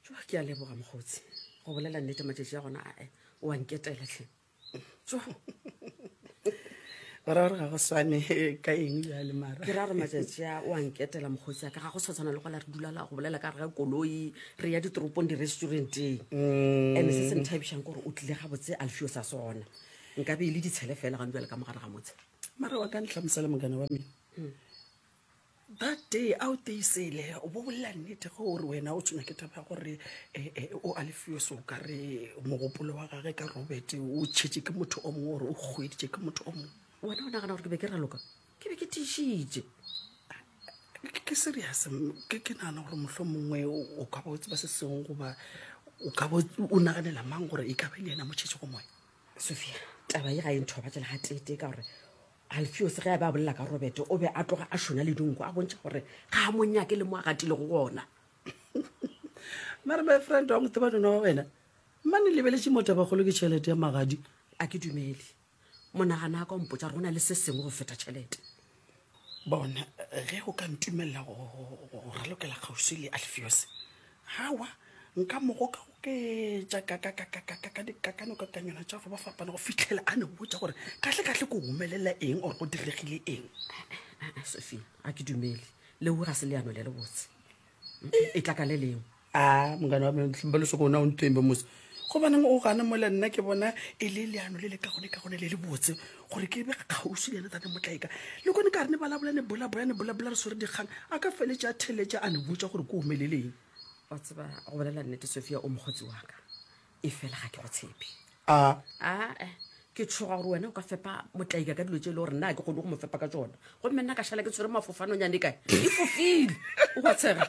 tsoa ke a leboga mokgotsi go bolela nnete matšatši a gona ae oa nketela tlhe tsoa gora gore ga go swane ka eng jale mara ke ra gore matšatši a oa nketela mokgotsi a ka ga go sa tshwana le gola re dulala go bolela ka rega koloi re ya ditoropong di-restauranteng mm. and se se nthabišang kore o tlile ga botse alfio sa sona nka be e le ditshele fela gane jale ka mogare ga motshe mara wa ka ntlhamosela mogana wa mene hmm. That day a o teisele o bo bolela nnete ge o re wena o tshwenya ke taba ya gore eh, eh, o a lefiwe so ka re mogopolo wa gage ka robert o tšhetše ke motho o mongwe gore o kgweditše ke motho o mongwe wena o nagana gore ke be ke raloka ke be ke tišitše Ke- ke serious m- ke ke nagana gore mohlho mongwe o ka ba o tseba se sengwe goba o ka ba o- o naganela mang gore e ka ba e le yena motšhetšego moya sophia taba ye ga e nthobatšela ga tete ka gore Alfiose ge a be a bolela ka Robete, o be a tloga a šona le dinko, a bontšha gore ga a monyake le mo a gatilego gona. Mare my friend wa motho ba nona wa wena mane lebeletše motho bagolo ke tšhelete ya magadi a ke dumele monagana a ka ompotsa gore go na le se sengwe go feta tšhelete bona ge o ka ntumelela go ralokela kgauswi le alfiose Aowa, nka mo gokagoketša ka dikakanokakanywana tša go ba fapana go fitlhela a ne botša gore kahlekahle ko humelela eng or go diregile eng. Sophia, a ke dumele leo ga se leano le le botse. E tla ka le lengwe. A mongane wa mengtlhimba le soko ona o ntembe mose. Gobaneng o gane mo le nna ke bona e le leano le le ka gone ka gone le le botse gore ke be kgauswi le ene tate motlaeka le kone ka re ne balabola ne bolabola ne bolabola re swere dikgang a ka feletse a theletša a ne botša gore ko omeleleng wa tseba go bolela nnete sofia o mokgotsi wa ka e fela ga ke go tshepe a aa eh, ke tshoga gore wena o ka fepa motlaika ka dilo tse e le gore nna a ke kgone go mo fepa ka tsona gomme nna ka šala ke tshwere mafofanonyane kae e fofile o ka tshega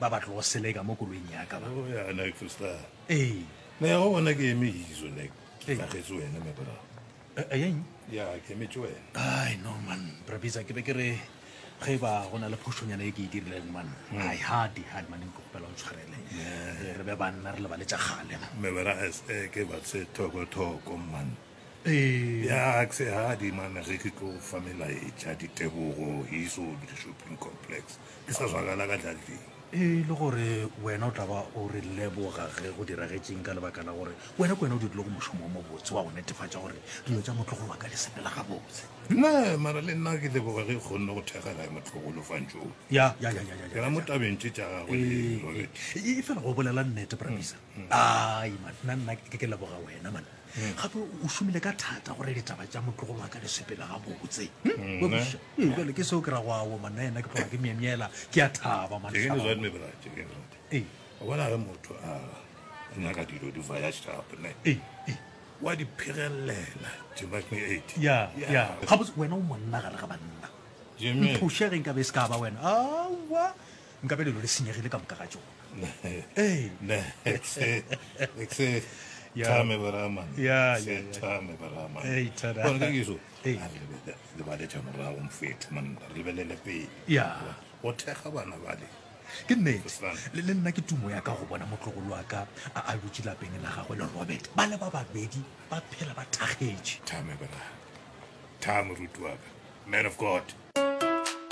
ba ba tlogo seleka mo koloing ya ka ba Oh, ya, Nick, Foster. ee Na ya go bona ke eme izo, Nick. Ke Ee. tlagetse wena, me bra. Eh, eh, eng Ya, ke emetse wena. ai no man brabisa ke be ke re ge ba go na le phošonyana e ke e dirileng man ai hadi hadi man nko kgopela o ntshwarele Eh, re be banna re lebale tša kgale man. Me bra, es- eh, ke ba se thoko-thoko, man. ee Ya, ke se hadi, man, ge ke tlo fa melaetša ditebogo, he's all the shopping complex. ke sa zwagala ka tlateng e le gore wena o tla ba o re leboga ge go diragetseng ka lebaka la gore wena ke wena o dirile go mošomo wa mobotse wa go netefatša gore dilo tša motlogolo wa ka di sepela gabotse ne mara le nna ke leboga ge e kgonne go thega gae motlogolo fantšong ya ya ya ya ya ke la mo tabeng tše tša gagwe e fela go bolela nnete brabisa mm, mm. ai man nna nna ke ke leboga wena man thata hmm. gape o šomile ka thata gore ditaba tša motlogolo wa ka di sepele gabotse hmm? hmm, ee, jale ke seo ke ra go ao manna ena ke tloga ke myemyela ke a thaba bona ge motho a nyaka dilo di vaya shapne ee, ee. wa di phegelela gabotse wena o monna gare ga banna mphošegeng ka be se ka ba wena awa nkabe lelo le senyegile ka moka ga tsona Tame Barama. Yeah, yeah, yeah. Tame Barama. Hey, tada. Bona ke so. Hey. Le ba le tsa morago mfethe man re lebelele pele. Yeah. O thega bana bale. ke nnete le le nna ke tumo ya ka go bona motlogolo wa ka a a dutse lapeng la gagwe le robert ba le ba babedi ba phela ba thakgetše thame bra thame rutuaka man of god